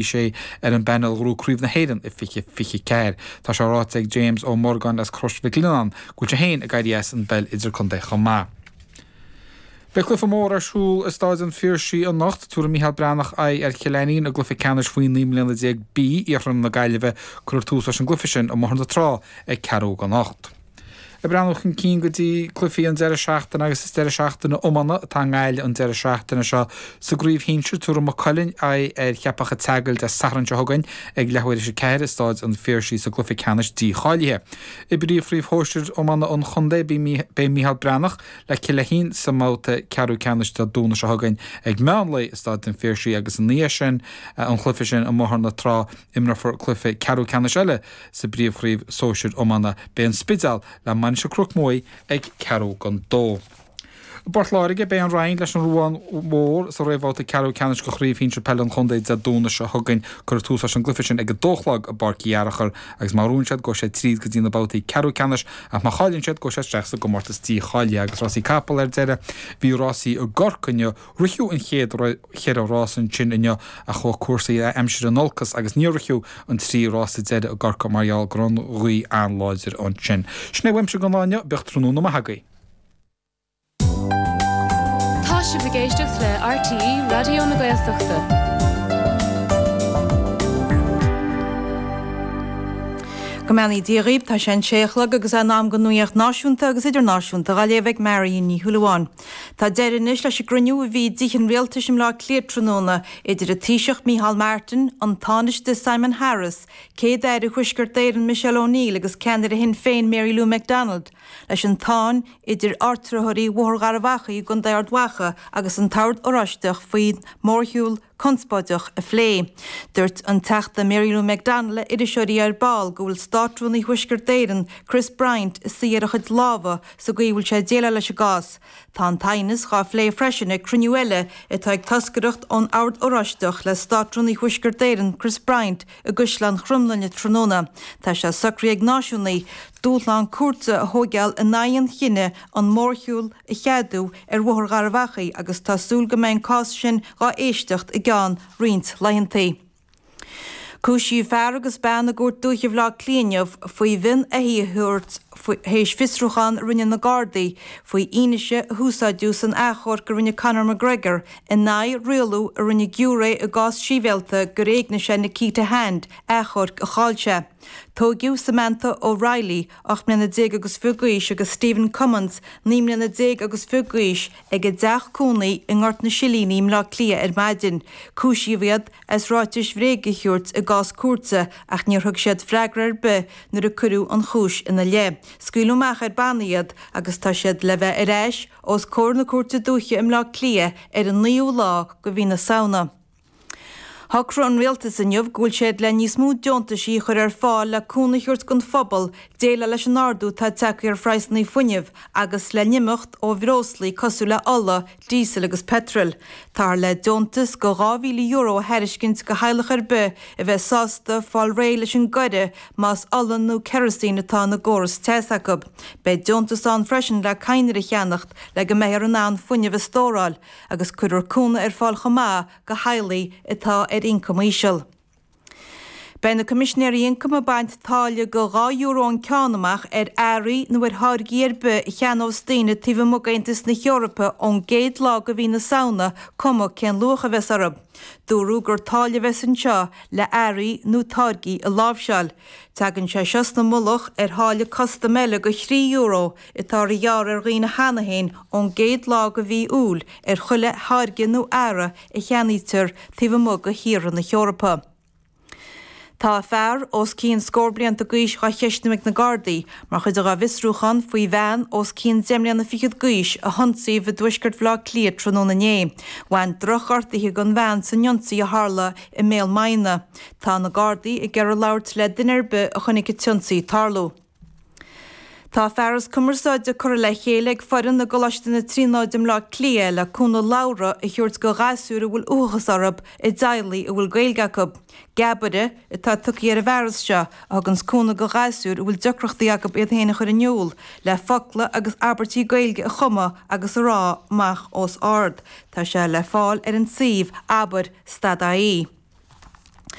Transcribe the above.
Is é ar an bpainéal a ghnóthaigh Craobh na hÉireann in 2024. Tá sé ráite ag James Ó Morgáin as Crois Mhic Lionnáin go bhfuil sé féin ag éirí as an bpeil idircontae chomh maith. Beidh cluiche mór ar siúl i Stáid an Phiarsaigh anocht. Tabharfaidh Micheál Breathnach aghaidh ar Chill Ainnín i gcluiche ceannais faoi naoi mbliana déag B iarthar na Gaillimhe. Cuirfear tús leis an gcluiche sin i mBóthar na Trá ag ceathrú chun a hocht anocht. Ag breathnú chun cinn go dtí cluichí an deireadh seachtaine agus is deireadh seachtaine iomána atá i nGaillimh an deireadh seachtaine seo. Sa gcraobh shinsir, tabharfaidh Maigh Cuilinn aghaidh ar Cheapach a' tSeagail Dé Sathairn seo chugainn ag leathuair théis a ceathair i Stáid an Phiarsaigh sa gcluiche ceannais dícháilithe. I bpríomhchraobh shóisir iomána an chontae, beidh Micheál Breathnach le Cill Fhéithín sa mbabhta ceathrú ceannais Dé Domhnaigh seo chugainn ag meán lae i Stáid an Phiarsaigh agus ina dhiaidh sin an cluiche sin i mBóthar na Trá Imreofar cluiche ceathrú ceannais eile sa bPríomhchraobh Sóisir Iomána. Beidh An Spidéal, le Mainistir Chnoc Muaidh, ag ceathrú chun a dó. I bPort Láirge, beidh An Rinn leis an Ruán Mhór sa réamhbhabhta ceathrú ceannais de Chraobh Shinsir Peile an Chontae Dé Domhnaigh seo chugainn. Cuirfear tús leis an gcluiche sin ag a dó a chlog i bPáirc Uí Fhearachair agus má bhuann siad, gabhfaidh siad tríd go dtí na babhtaí ceathrú ceannais ach má chailleann siad, gabhfaidh siad isteach sa gcomórtas dícháilithe. Agus Rásaí Capall ar deireadh, bhí rásaí i gCorcaigh inniu. Ritheadh an chéad cheithre rása ansin inniu ach chuaigh cúrsaí aimsire in olcas agus níor ritheadh an trí rása deiridh i gCorcaigh mar gheall go raibh an ghaoth an-láidir ansin. Sin é uaimse don lá inniu, bíodh tráthnóna maith agaibh. Tá sibh ag éisteacht le RTÉ Raidió na Gaeltachta. Go mbeannaí Dia dhaoibh, tá sé an sé a chlog agus é in am don nuacht náisiúnta agus idirnáisiúnta dá léamh ag Marion Ní Shúilleabháin. Tá deireadh anois leis an gcruinniú a bhí i dTithe an Rialtais i mBleá Cliath tráthnóna idir an Taoiseach Micheál Martin, an Tánaiste Simon Harris, Céad-Aire Thuaisceart Éireann Michelle O'Neill agus ceannaire Shinn Féin Mary Lou McDonald, leis an tsáinn idir áitritheoirí Bhóthar Gharbh Achaidh i gContae Ard Mhacha agus an tOrd Oráisteach faoi mhórshiúl conspóideach a phlé. Dúirt an Teachta Mary Lou McDonald le iriseoirí ar ball go bhfuil Státrúnaí Thuaisceart Éireann, Chris Bryant, ina shuí ar a chuid lámha sa gcaoi a bhfuil sé ag déileáil leis an gcás. Tá an t-aighneas dhá phlé freisin ag cruinniú eile atá ag toscaireacht ón Ord Oráisteach le Státrúnaí Thuaisceart Éireann, Chris Bryant, i gCaisleán Chromghlinne tráthnóna. Tá sé socraithe ag náisiúnaigh, dúshlán cúirte a thóigeáil in aghaidh an chinneadh an mórshiúl a cheadú ar Bhóthar Gharbh Achaidh agus tá súil go mbeidh an cás sin dhá éisteacht i gceann roinnt laethantaí. Cúisíodh fear agus bean i gCúirt Dúiche Bhaile Átha Cliath inniu faoi mhionn éithigh a thabhairt théis fiosrúchán a rinne na Gardaí faoi fhianaise a úsáideadh san athchomharc a rinne Conor McGregor in aghaidh rialú a rinne giúiré i gcás sibhialta gur éignigh sé Nikita Hand, athchomharc a chaill sé. Tóigeadh Samantha O'Reilly. 18 mbliana déag agus fiche d'aois, agus Stephen Cummins, 19 mbliana déag agus fiche d'aois, ag a dteach cónaí i nGort na Silíní i mBleá Cliath ar maidin. Cúisíodh iad as ráitis bhréige a thabhairt i gcás cúirte ach níor thug siad freagra ar bith nuair a cuireadh an chúis ina leith. Scaoileadh amach ar bannaí iad agus tá siad le bheith ar ais os comhair na Cúirte Dúiche i mBleá Cliath ar an 9ú lá de mhí na Samhna. Shocraigh an Rialtas inniu go bhfuil siad le níos mó deontaisí a chur ar fáil le cúnamh a thabhairt don phobal déileáil leis an ardú atá ag teacht ar phraghsanna fuinneamh agus le n-imeacht ó bhreoslaí cosúil le ola, díosal agus peitreal. Táthar le deontas go €2,000 a thairiscint go theaghlach ar bith a bheidh sásta fáil réidh leis an gcoire más ola nó kerosene atá ina gcóras teasa acu. Beidh deontas ann freisin le cadhnraí a cheannacht le go mbeifear in ann fuinneamh a stóráil agus cuirfear cúnamh ar fáil chomh maith go theaghlaigh atá ar ioncam íseal. Beidh na Coimisinéirí Ioncaim ag baint táille de dhá euro an ceann amach ar earraí nó ar tháirgí ar bith a cheannós daoine taobh amuigh d'Aontas na hEorpa ón gcéad lá de mhí na Samhna cuma cén luach a bheas orthu. Dúradh gur táille a bheas anseo le earraí nó táirgí a láimhseáil. Tagann sé seo sa mullach ar tháille custaim eile de thrí euro atá dhá ghearradh ar dhaoine cheana féin ón gcéad lá de mhí Iúil ar chuile tháirge nó earra a cheannaítear taobh amuigh de thíortha na hEorpa. Tá fear os cionn scór blianta d'aois dhá cheistiú ag na Gardaí mar chuid dá bhfiosrúchán faoi bhean os cionn deich mbliana fichead d'aois a hionsaíodh i dtuaisceart Bhaile Átha Cliath tráthnóna inné. Bhain drochghortuithe don bhean san ionsaí a tharla i mBéal Maighne. Tá na Gardaí ag iarraidh labhairt le duine ar bith a chonaic an t-ionsaí ag tarlú. Tá fearas cumarsáide curtha le chéile ag foireann i gColáiste na Tríonóide Bhleá Cliath le cúnamh labhartha a thabhairt do ghasúir a bhfuil uathachas orthu i dteaghlaigh a bhfuil Gaeilge acu. Geabaire atá tugtha ar an bhfearas seo, a thugann's cúnamh do ghasúir a bhfuil deacrachtaí acu iad féin a chur in iúl, le focla agus abairtí Gaeilge a chumadh agus a rá amach os ard. Tá sé le fáil ar an suíomh, abair, stad ie.